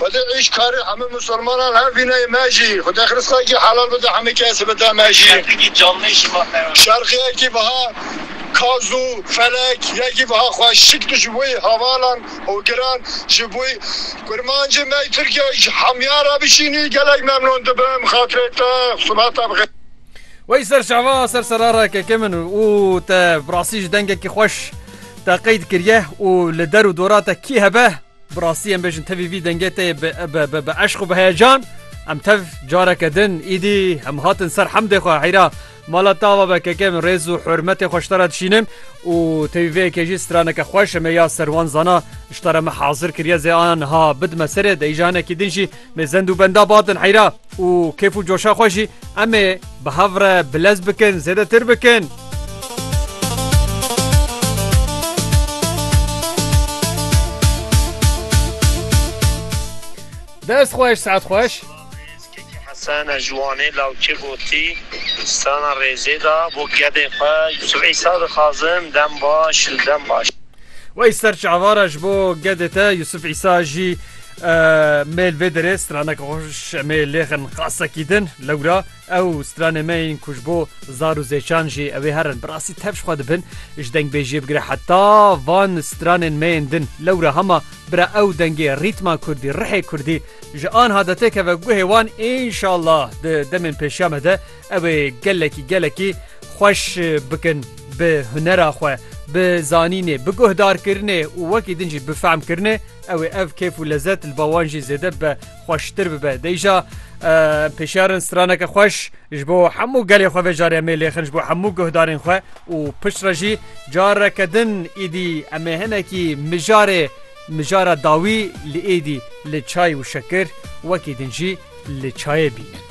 Xwedê îş karê hemî musulmanan hev bîne yê me jî. Xwedê xirskakî helal bide hemî kesî bide me jî. Şerqikî canlê şima me ya. Şerqî yekî biha kaz û felek yekî biha xweşik tu ji boî hevalan û giran ji boî kurmancê me Tirkiye ji hemîyan re bişînî gelek memnûn dibim xatirê te sibe te bixê. Wey ser şeva ser serara keke min û te bi rastî ji dengekî xweş te qeyd kiriye û li der û dora te kî hebe Bi rastî em bêjin tevî vî dengê tê bi eşq û bi heyecan em tev careke din îdî em hatin ser hemdê xwe heyra mala tava be keke min rêz û hurmetê xwe ştara dişînim û tevî vê yekê jî straneke xweş em ê ya serwan zana ştara me hazir kiriye zê an ha bidime serê de îjanekî din jî Mê zend û benda batin heyra û kêf û coşa xwe jî em ê bi hev re bilez bikin, zêdetir bikin. Dest xweş, saet xweş. Sana juwanê lawçê gotî sana rêzê da bo gedê xwe Yusuf Îsa dixazim dem baş û dem baş. Wey ser çavara ji bo gedê te Yusuf Îsa jî Mêl vê derê straneke xweş em ê lêxin qasekî din lewra ew stranê me yên ku ji bo zar û zêçan jî ew ê herin bi rastî tev ji xwe dibin ji dengbêjiyê bigire heta van stranên me yên din lewra hema bira ew dengê rîtma kurdî rihê kurdî ji anha de têkeve guhê wan înşallah di demên pêşiya me de Ew ê gelekî gelekî xweş bikin bi hunera xwe, bi zanînê, bi guhdarkirinê û wekî din jî bi fehmkirinê, ew ê ev kêf û lezet li ba wan jî zêde bibe, xweştir bibe. Dê îja em pêşiyar in straneke xweş ji bo hemû gelê xwe vê carê em ê lêxin ji bo hemû guhdarên xwe û piştre jî careke din êdî em ê hinekî mijarê mijara dawî li êdî li çay û şekir wekî din jî li çayê bînin.